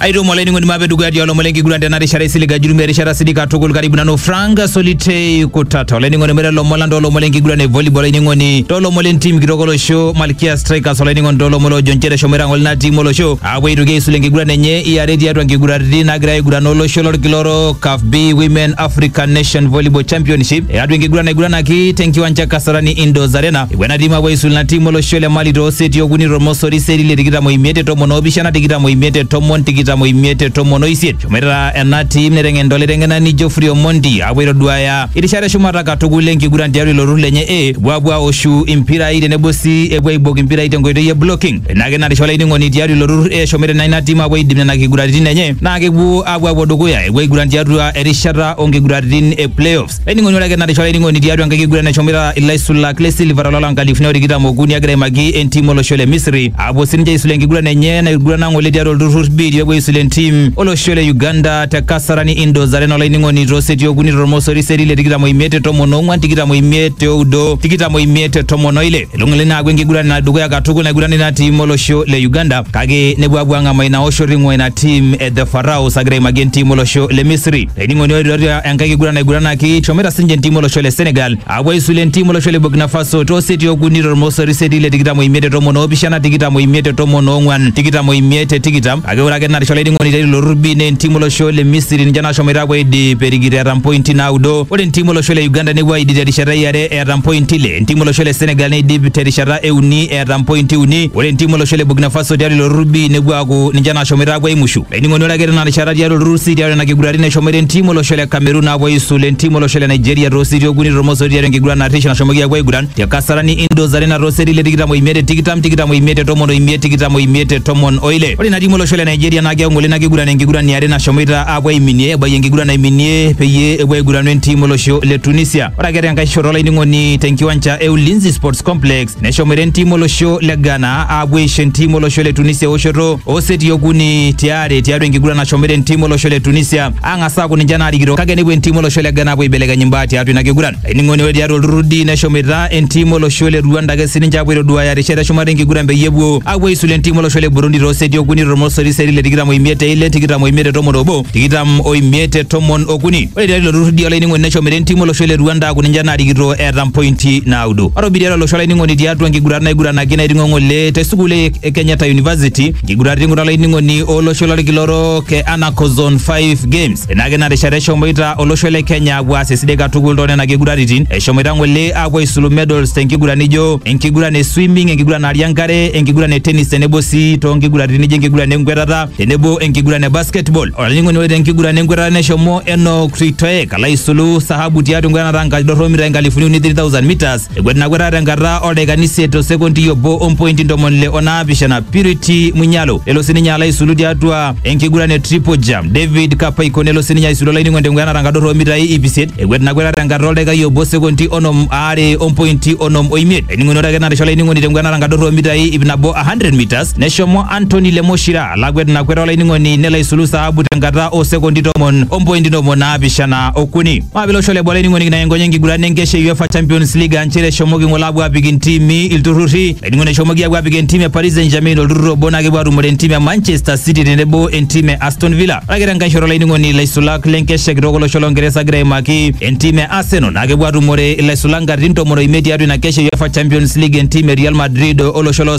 aitomo olainining'oni mape dukuya tialo olomon lenkiguran tena rishata isiliga jurumi erishata sidii katukul karibu nanu frank solitei kutata olainining'oni mure lomon lang toolomon lenkiguran e volleyball olainining'oni toolomon lentim kitok olosho malkia strikers olainining'oni toolomon loojo nchere shomoita ng'ole ina tim olosho aapuo aitoki aisul enkiguran enye iare tiatua nkiguraritin naagira aiguran olosho lolkila orok caf b women african nation volleyball championship eatua enkiguran naiguranaki tenkiwanja kasarani indoors arena Epuo ena timu apuo aisul ina timu olosho le Mali too seti okuni tormosori seti le tikitam oimiet te tomon oopishana tikitam oimiet te tomon tikitam oimiet te tomon oisiet. Eshomoita ena timu neteng'enita olaiteng'enani Geoffrey Omondi apuo aitoduaya irishat eshumata katukul enkiguran tiatua ilo turrur lenye A. Epuo apuo aoshu impirai tenebo sii epuo aibok impirai tenkoitoi e blocking. Ina ake natisha olainining'oni tiatua ilo turrur A eshomoita naa ina timu apuo aidip nena kiguraritin enye naa kepuo apuo apuo dukuya epuo aiguran tiatua erishata oo nkiguraritin e playoffs. Laining'oni ore ake natisho laining'oni tiatua enkiguran eshomoita ilaisulak le Silver ololo nkalifuni o tikitam okuni egira aimaki entim olosho le Misri aapuo sininche aisul enkiguran enye naigurana ng'ole tiatua olturrur biitia epuo aisul entim olosho le Uganda te Kasarani Indoors Arena olainining'oni too seti okuni tormosori seti le tikitam oimiet te tomon oong'wan tikitam oimiet te oudo tikitam oimiet te tomon oile elo ng'ole ina aaku enkiguran edukuya katukul naigurana ina tim olosho le Uganda kake nepuo aapuo ang'amaa ina oshoto eing'ua ina tim e The Pharaohs agira aimaki entim olosho le Misri. Laining'oni ore tiatua enkae kiguran naiguranaki eshomoita sininche entiim olosho le Senegal apuo aisulu entiim olosho le Burkina Faso too seti okuni tormosori seti le tikitam oimiet te tomon oopishana tikitam oimiet te tomon oong'wan tikitam oimiet te tikitam kake ore ake narisha olainining'oni te ilo turrur B naa entiim olosho le Misiri ninche nashomoita apuo aidip erikito eeta mpointi naudo ore entiim olosho le Uganda nepuo aidip terishata e are eeta mpointi ile entiim olosho le Senegal neidip terishata e uni eeta mpointi uni ore entiim olosho le Burkina Faso tiatua ilo turrur B nepuo aaku ninche nashomoita apuo aimushu. Ainining'oni ore ake tena rishata tiatua olturur sii tiatua ina kiguran neshomoita entim olosho le Cameroon aapuo aisul entim olosho le Nigeria too seti okuni tormosori tiatua enkiguran narrish nashomoki aapuo aiguran te Kasarani Indoors Arena too seti le tikitam oimiet te tikitam, tikitam oimiet te tomon oimiet, tikitam oimiet te tomon oile. Ore ina tim olosho le Nigeria naa keing'ole ina kiguran enkiguran e are nashomoita aapuo aiminie ebayie enkiguran naiminie peyie epuo aiguranu entim olosho le Tunisia. Ore ake tenkae shoto olainining'oni tenkiwanja e Ulinzi Sports Complex Neshomore entim olosho le Ghana aapuo aisho entim olosho le Tunisia eoshoto ooseti okuni tiare tiatua enkiguran nashomore entim olosho le Tunisia ang'as aaku ninche naarikito kake nepuo entim olosho le Ghana aapuo aibelekeny imbaa tiatua ina kiguran. Ainining'oni ore tiatua olturrur D neshomita entim olosho le Rwanda ake sininche aapuo aitoduaaya rishat eshumata enkiguran peyie epuo aapuo aisulu entim olosho le Burundi tooseti okuni tormosori seti le tikitam oimiet te ile tikitam oimiet te tomon obo tikitam oimiet te tomon okuni. Ore tiatua ilo turrur D olainining'oni neshomita entim olosho le Rwanda aaku ninche naarikito eeta mpointi naudo. Atobiria lelo shora ining'oni tiatua nkigurat naiguranaki naiting'o ng'ole te sukuul e e Kenyatta University, nkigurat ing'ura laining'oni olosho lolkila orok e Anaco Zone 5 Games. Enake ina rishata eshomoita olosho le Kenya apuo aas esidai katukul too nena kiguraritin. Eshomoita ng'ole apuo aisulu medals te nkiguran nijo enkiguran e swimming, enkiguran naari enkare, enkiguran e tennis tenebo sii too nkiguraritin nijo enkiguran enkwetata tenebo enkiguran e basketball. olainining'oni ore tenkiguran enkwetata neshomo Enoch Ritoek alo aisulu sahabu tiatua enkwetata enkaji dorropu mitai nkalifuni uni 3000 meters ekwet ina kwetata tenkata oldaikani isiet o sekondi obo ompointi ntomoni ile onaapishana Purity Munyalo nelo sininye alo aisulu tiatua enkiguran e triple jump David Kapaiko nelo sininye aisulu olainining'oni tenkwetata enkata dorropu mitai iip isiet ekwet ina kwetata tenkata oldaikai obo sekondi onom aare ompointi onom oimiet ainining'oni ore ake natisha olainining'oni tenkwetata enkata dorropu mitai iip nabo 100 meters Neshomo Anthony Lemoshira lakwet ina kwet olainining'oni nelo aisulu saabu tenkata oo sekondi tomon ompointi ntomoni naapishana okuni. Maabila olosho le boo olainining'oni kinayengony enkiguran enkesha e UEFA Champions League aa nchere eshomoki ng'ole aapuo aapik intimi ilturrurri. Olainining'oni eshomoki aapuo aapik entim e Paris Saint-Germain olturrur obo naa kepuo aatumore entim e Manchester City tenebo entim e Aston Villa. Ore ake tenkae shoto olainining'oni ilaisulak le nkesha kitok olosho lo Ngeresa egira aimaki entim e Arsenal naa kepuo aatumore ilaisulak nkatitin tomon oimiet tiatua ina kesha e UEFA Champions League entim e Real Madrid olosho lo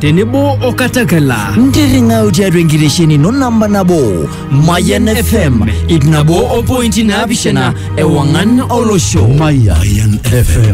tenebo o katakala ntirring'au tiatua enkitesheni ino namba nabo mayan fm ip nabo o pointi naapishana ewang'an olosho Mayan FM.